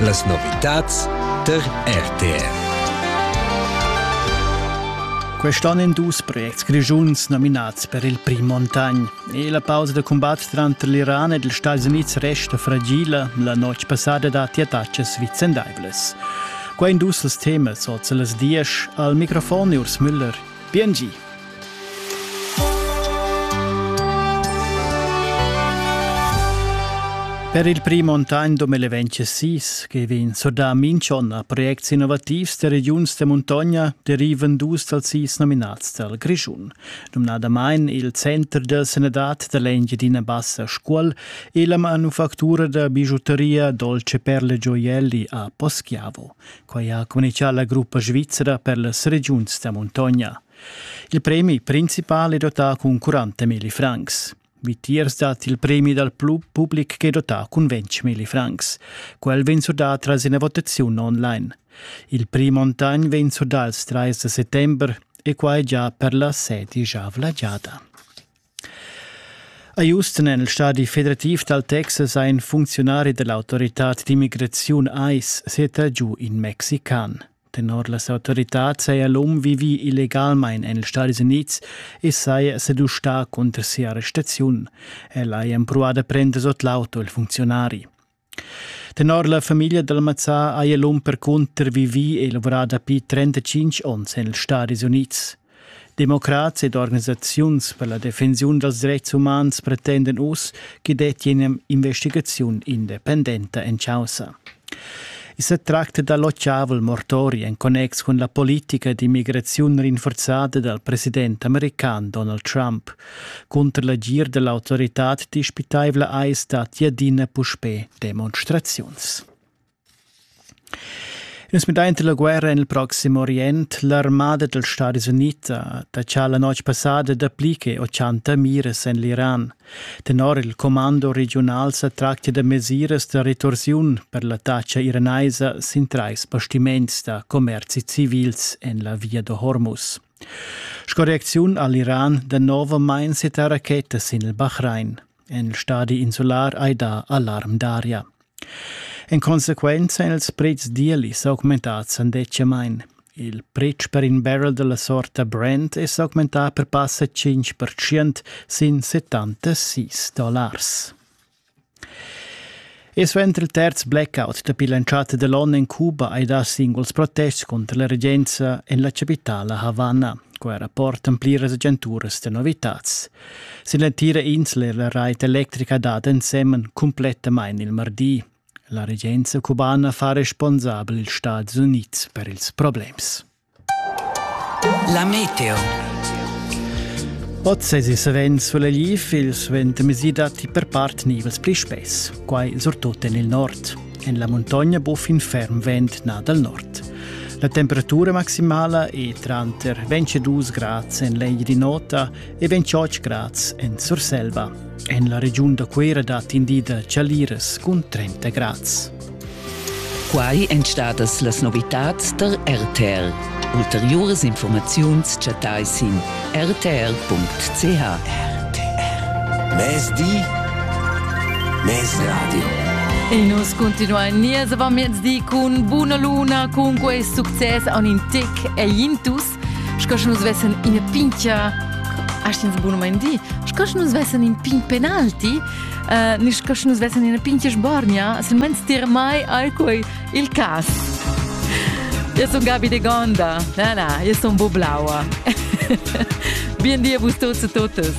Las novitads der RTR. Quest'onn en dus projects grischuns nominads per il prim Montagn. E la pausa da combat tranter l'Iran ed ils Stati Unids resta fragila. La notg passada datti attacas vicendaivlas. Qua in dus els temas oz las dies al microfon Urs Müller. Bien Per il prim onn 2026 che vegn surdà minch'on a projects innovativs da regiuns da muntogna derivan dus dals sis nominats dal Grischun, numnadamain il Center da sanadad da l'Engiadina Bassa Scuol e la manufactura da bigiuteria Dolce Perle Gioielli a Poschiavo. Quai ha communichà la gruppa svizzera per las regiuns da muntogna. Il premi principal è dotà cun 40.000 francs. Vitiers dat il premi dal public che è dotà cun 20.000 francs. Quel vegn surdà tras ina votaziun online. Il prix Montagn vegn surdà il 30 settember e quai già per la sedisch avla giada. A Houston en il stadi federativ dal Texas ha in funcziunari dell'autoritad d'immigraziun ICE seta giu in mexican. Tenor las autoritads saja l'um vivi illegalmain en ils Stadis Unids e saja sedustà cunter sia arrestaziun. El haja empruà da prender sot l'auto il funcziunari. Tenor la famiglia dal mazzà haja l'um percunter vivì e lavorà dapi 35 onns en ils Stadis Unids. Democrats ed organisaziuns per la defensiun dals dretgs umans pretendan uss ch'i dettia in'investigaziun independenta en chaussa. I sa tracta da l'otgavel mortori en connex cun la politica d'immigraziun rinforzada dal president american Donald Trump, Cunter l'agir dell'autoritad dispitaivla eis stat adina puspè demonstraziuns. Nus midaint la guerra en il Proxim Orient, l'armada dels Stadis Uniti da cha la notg passada dapli che 80 mires en l'Iran. Tenor il comando regional sa tractia da mesiras da retorsiun per l'attacca iranaisa sin trais bastiments da commerzi civils en la Via de Hormuz. Sco reacziun ha l'Iran danovamain settà rachetas sin il Bahrain. En il stadi insular hai dà alarm d'aria. En consequenza èn ils pretschs d'ieli s'augmentads andetgamain. Il pretsch per in barrel della sorta Brent è s'augmentà per passa 5% sin 76 dollars. E suenter il terz blackout dapi l'entschatta da l'onn en Cuba hai dà singuls protests cunter la regenza en la chapitala Havana. Quai rapportan pliras agenturas da novitads. Sin l'entira insla è la rait electrica dad ensemen cumplettamain il mardi. La regenza cubana fa responsabel ils Stati Unids per ils problems. La meteo. Oz sesi savens vul liv il suenter mesi datti per part nivels pli spess, quai surtut en il nord. En la muntogna bu fin ferm vent na dal nord. La temperatura maximala è tranter 22 grad en l'egl di nota e ben tschotsch grads en Surselva. En la regiun da Cuera dat in di da chaliras cun 30 grads. Quai èn stadas las novitads da RTL. Ulteriuras informaziuns chattai sin rtr.ch. RTR. Mezdi. Mezradio. E nus continuain nies avant miezdi cun buna luna, cun quest success an in tec e intus Sco sche nus vessen ina pintgia astens bun mein di, sco sche nus vessen in pin penalti, uh, ni sco sche nus vessen ina pintgia sbornia, silmeins tier mai ei quei il cas. Eu sun Gabi de Gonda. Na, na, eu sun Bublaua. Bien dia vus tots e totes.